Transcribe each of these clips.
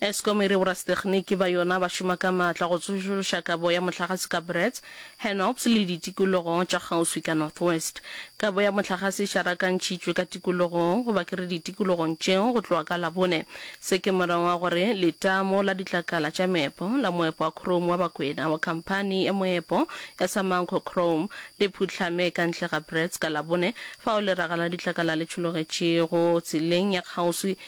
Eskom e re borasetekgniki ba yona ba šoma ka maatla go tsošološa kabo ya mohlagase ka Bretts, Hennops le ditikologo tša kgauswi ka North West. Kabo ya mohlagase e šarakantšhitšwe ka tikologong goba ke re ditikologong tšeo go tloga ka Labone. Se ke morago ga gore letamo la ditlakala tša meepo la moepo wa khrome wa Bakwena wa khamphani ya moepo ya Samancor Chrome le phuhlame ka ntle ga Bretts ka Labone fao leraga la ditlakala le tšhologetšego tseleng ya kgauswi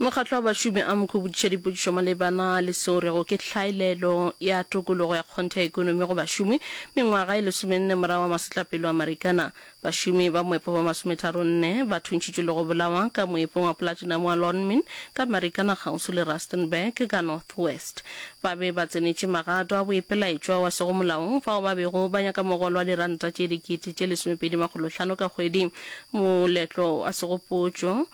Mokgatlo wa Bašomi amk o botšiša dipotšišo malebana le seo rego ke hlaelelo ya tokologo ya kgonthe ya ekonomi go bašomi. Mengwaga e lesomenne morago ga masetlapelo a Marikana, bašomi ba moepo ba masometharonne ba thuntšhitšwe le go bolawa ka moepong wa platinum wa Lonmin ka Marikana kgauswi le Rustenburg ka North West. Ba be ba tsenetše magato a boipelaetšwa wa sego molaong fao ba bego ba nyaka mogolo wa diranta tše dikete tše lesomepedi makgolo hlano ka kgwedi, moletlo wa segopotšo,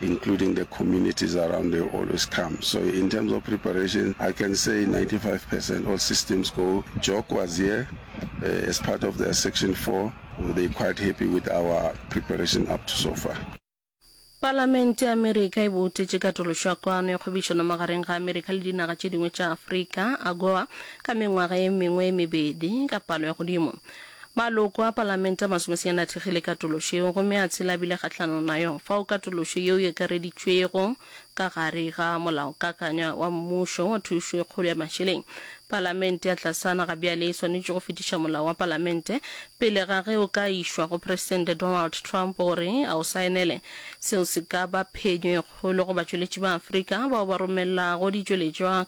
including the communities around they always come so in terms of preparation I can say 95 percent all systems go Jock was here uh, as part of their section 4 they quite happy with our preparation up to so far Palamente ya Amerika e boutetše katološo ya Kwano ya Kgwebišano Magareng ga Amerika le Dinaga tše Dingwe tša Afrika, AGOA, ka mengwaga e mengwe e mebedi, ka palo ya godimo. Maloko a Palamente a masomesenyane a thekgile katološo yeo gomme a tshela a bile kgahlanong na yo, fao katološo yeo e akareditšwego ka gare ga molaokakanywa wa mmušo wa thušo e kgolo ya mašeleng. Palamente ya tlasana ga bjale e swanetše go fetiša molao wa Palamente pele ga ge o ka išwa go Presidente Donald Trump gore a o saenele. Seo se ka ba phenyo e kgolo go batšweletši ba Afrika bao ba romelago ditšweletšwa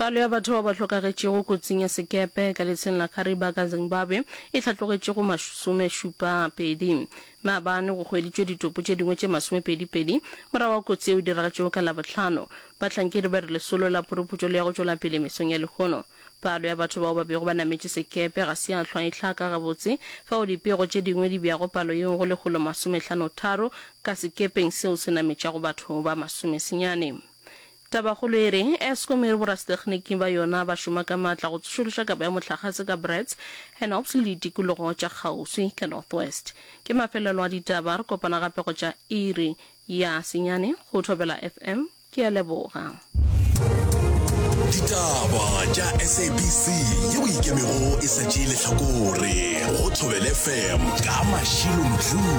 Palo ya batho bao ba hlokagetšego kotsing ya sekepe ka letsheng la Kariba ka Zimbabwe e hlatlogetše go masomešupa pedi. Maabane go hweditšwe ditopo tše dingwe tše masomepedi pedi morago ga kotsi yeo e diragetšego ka Labohlano. Bahlankedi ba re lesolo la phuruphutšo le ya go tšwela pele mesong ya lehono. Palo ya batho bao ba bego ba nametše sekepe ga se ya hlwa e hlaka gabotse, fao dipego tše dingwe di beago palo yeo go lekgolo masome hlano tharo ka sekepeng seo se nametšago batho ba masomesenyane. Tabakgolo e re, Eskom e re borasetekgniki ba yona ba šoma ka matla go tsošološa kabo ya mohlagase ka Braz, Hennops le ditikologo tša kgauswi ka North West. Ke mafelelo a ditaba, re kopana gape go tša iri ya senyane go Thobela FM. Ke a leboga. Ditaba tša SABC yeo e ikemego e sa tšee lehlakore go Thobela FM ka Mashilo Mdluli.